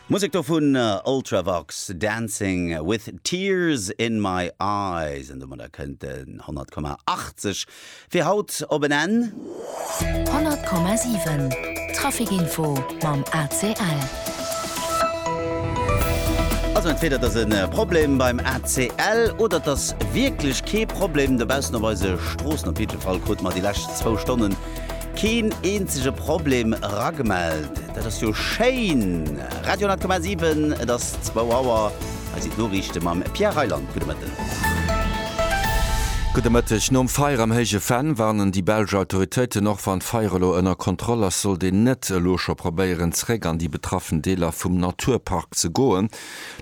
Musek do vun Ultravox, Dancing with Tears in my Eyes. An domadder kënnt den 100,80 fir haut op en Enn. 100,7 Trafikinfo mam ACL. Also entweder et ass e Problem beim ACL oder et ass wierklech kee Problem dobaussen op eise Stroossen. Op jiddwe Fall krute mer déi lescht zwou Stonnen Keen eenzege Problem eragemellt. Dat ass jo schéin! Radio 10,7, et ass 2 Auer. Hei sinn d'Noriichte mam Pierre Reyland. Gudde Mëtten. Gudde Mëtteg. Nom Feier am Héije Venn warnen déi belsch Autoritéiten, Och wann d'Feier elo ënner Kontroll ass, sollt een net elo scho probéieren, zeréck an déi betraffen Deeler vum Naturpark ze goen.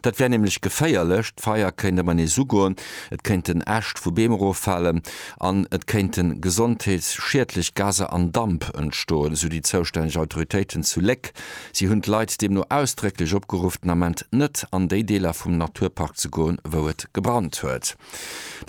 Dat wär nämlech geféierlech. D'Feier kéint ëm en nees ugoen, et kéinten Äscht vu Beem eroffalen. an et kéinte gesondheetsschiedlech Gaser an Damp entstoen, esou déi zoustänneg Autoritéiten zu Léck. Si hunn d'Leit deemno ausdrécklech opgeruff, den Ament net an déi Deeler vum Naturpark ze goen, wou et gebrannt huet.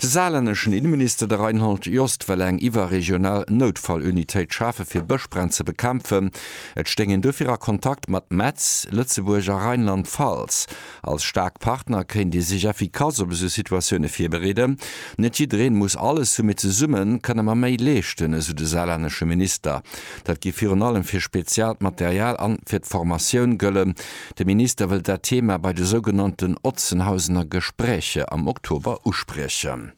De saarlänneschen Inneminister, de Reinhold Jost, wëll eng iwwerregional Noutfallunitéit schafe fir Bëschbränn ze bekämpfen. Et stéing een dofir a Kontakt mat Metz, Lëtzebuerg a Rheinland-Pfalz. Als staark Partner kéint ee sech effikass op esou Situatioune virbereeden. Net jiddereen muss alles hunn, mee zesumme kënne mer méi leeschten, esou de saarlännesche Minister. Dat géif virun allem fir speziaalt Material an fir d'Formatioun gëllen. De Minister wëllt dat Thema bei de sougenannten Otzenhausener Gespräche am Oktober uspriechen.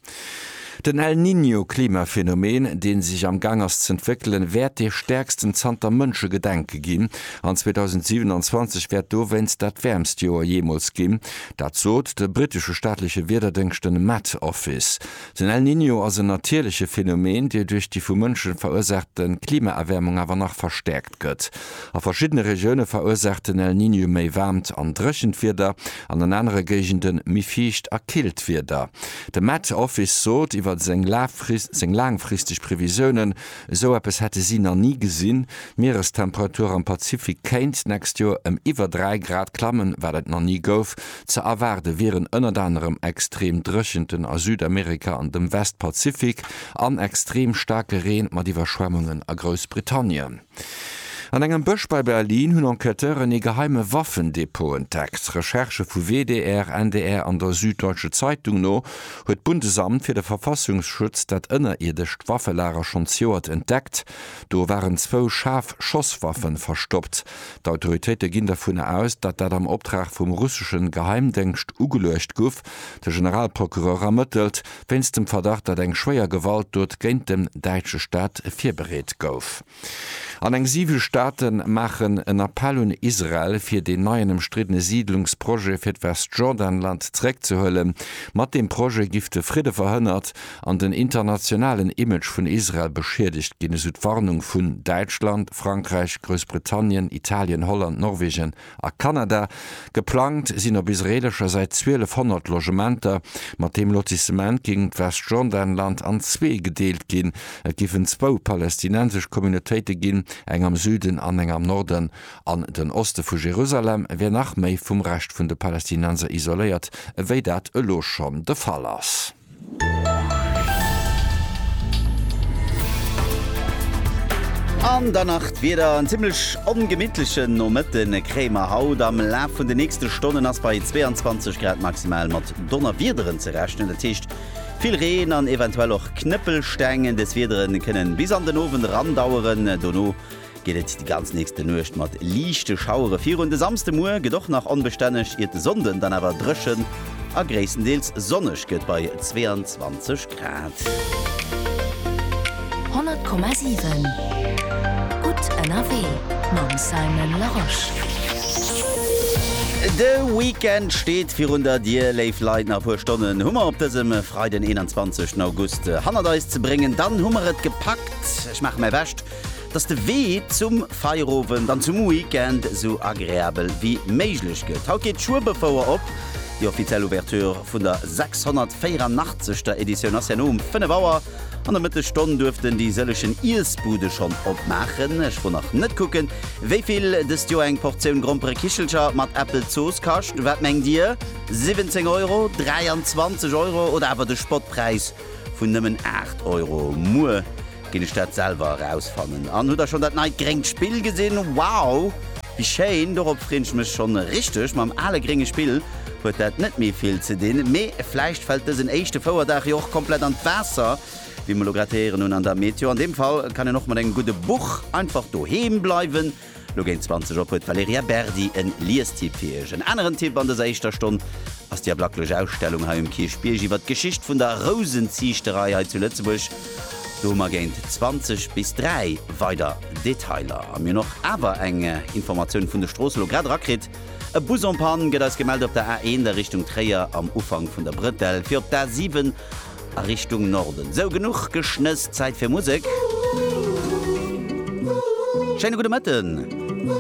Den El Niño Klimaphänomen, deen sech am Gang ass z'entwéckelen, wäert dee stäerksten zanter Mënschegedenke ginn, an 2027 wäert dowéinst dat wäermst Joer jeemools ginn. Dat sot de brittesche staatleche Wiederdéngschten Met Office. Den El Niño ass en natierleche Phänomen, dee duerch déi vu Mënsche verursaachte Klimaerwäermung awer nach verstäerkt. gëtt. A verschiddene Regioune verursaacht den El Niño méi waarmt an dréchent Wieder an an anere Géigende méi fiicht a killt Wieder. De Met Office sot iwwer seng laangfristeg Previsiounen, esou eppes hätte si nach ni gesinn. D'Mierestemperatur am Pazifik kéint d'nächst Joer ëm iwwer 3 Grad klammen, wat et nach ni gouf, Ze erwaarde wieren ënnert anerem extrem Dréchenten a Südamerika an dem Westpazifik an extrem staarke Reen mat Iwwerschwemmungen a Groussbritannien. An engem Bësch bei Berlin hunn Enquêteuren ee geheime Waffendepot entdeckt. Recherchë vu WDR, NDR an der Süddeutsche Zeitung no huet d'Bundesamt fir de Verfassungsschutz dat ënnerierdescht Waffelager schonn zejoert entdeckt. Do waren zwou schaarf Schosswaffe verstoppt. D'Autoritéite ginn dervunner aus, datt dat am Optrag vum russeschen Geheimdéngscht ugeluecht guff. De Generalprocureur ermëttelt wéinst dem Verdacht, datt eng schwéier Gewaltdot géint den däitsche Staat virbereet gouf. An eng siwe Staate maachen en Appell un Israel, fir deen neien ëmstriddene Siidlungsprojet fir d'Westjordanland zeréckzehuelen. Mat deem Projet giff de Fridde verhënnert an den internationalen Image vun Israel beschiedegt ginn, esou d'Warnung vun Däitschland, Frankräich, Groussbritannien, Italien, Holland, Norwegen a Kanada. Geplangt sinn op israeelescher Säit 1200 Logementer. Mat deem Lotissement géing d'Westjordanland an zwee gedeelt ginn. Et géifen zwou palästinensesch Communautéite ginn, eng am Süden an eng am Norden. An den Oste vu Jerusalem wär nach méi vum Rescht vun de Palästinenser isoléiert, ewéi dat elo schonn de Fall ass. An dann nach d'Wieder, En zimlech ongemitlechen Nomëtte kréie mer haut. Am Laf vun den nächste Stonnen ass bei 22 Grad maximal mat Donnerwiederen ze rechnen. Dat heescht vill Reen an eventuell och Knëppelsteng. Dës Wiedere kënne bis an den Owend erandaueren, dono geet et déi ganz nächste Nuecht mat liichte Schauere virun. De Samsdemuer gëtt och nach onbestänneg, iert de Sonnden dann awer dréchen a gréisstendeels sonneg gëtt bei 22 Grad. 100,7 gutt ënnerwee mam Simon Larosche. De Weekend steet virun der Dier, léif Leit. Nach e puer Stonnen hu mer op dësem Freiden 21 August hannert eis ze bréngen, dann hu mer et gepackt. Ech maache mäi Bescht dass de Wee zum Feierowend an zum Weekend esou agreabel wéi méiglech gëtt. Haut geet d'Schuebefouer op. Déi offiziell Ouverture vun der 684. Editioun ass herno um 5 Auer an der Mëttesstonn. Duerften déi sëllechen Iessbude schonn opmaachen. Ech wor nach net kucken, wéi vill dëst Joer eng Portioun Gromperekichelcher mat Äppelzooss kascht. Wat mengt Dir, 17 Euro, 23 Euro oder awer de Spottpräis vun nëmmen 8 Euro. Muer ginn ech dat selwer erausfannen. An hutt der schonn dat neit gréngt Spill gesinn? Wow, wéi schéin! Dorop freen ech mech schonn richteg. Mam ale grénge Spill huet dat net méi vill ze dinn, mee vläicht fält dësen éischte Fouerdag jo och komplett an d'Waasser, wéi mer elo grad héieren hunn an der Meteo. An deem Fall kann een och mat engem gudde Buch einfach doheem bleiwen. Lo géint 20 op huet d'Valerija Berdi e Liestipp fir iech. En aneren Tipp an dëser éischter Stonn ass déi ablaklech Ausstellung hei um Kierchbierg iwwert d'Geschicht vun der Rousenziichterei hei zu Lëtzebuerg. Do hu mer géint 20 bis 3 weider Detailer. A mir hunn och awer eng Informatioun vun de Stroosse lo grad erakritt. E Bus en panne gëtt eis gemellt op der A1 a Richtung Tréier am Ufank vun der Bretelle fir op d'A7. a Richtung Norden. Sou, genuch geschnëss, Zäit fir Musek. Schéine gudde Mëtten.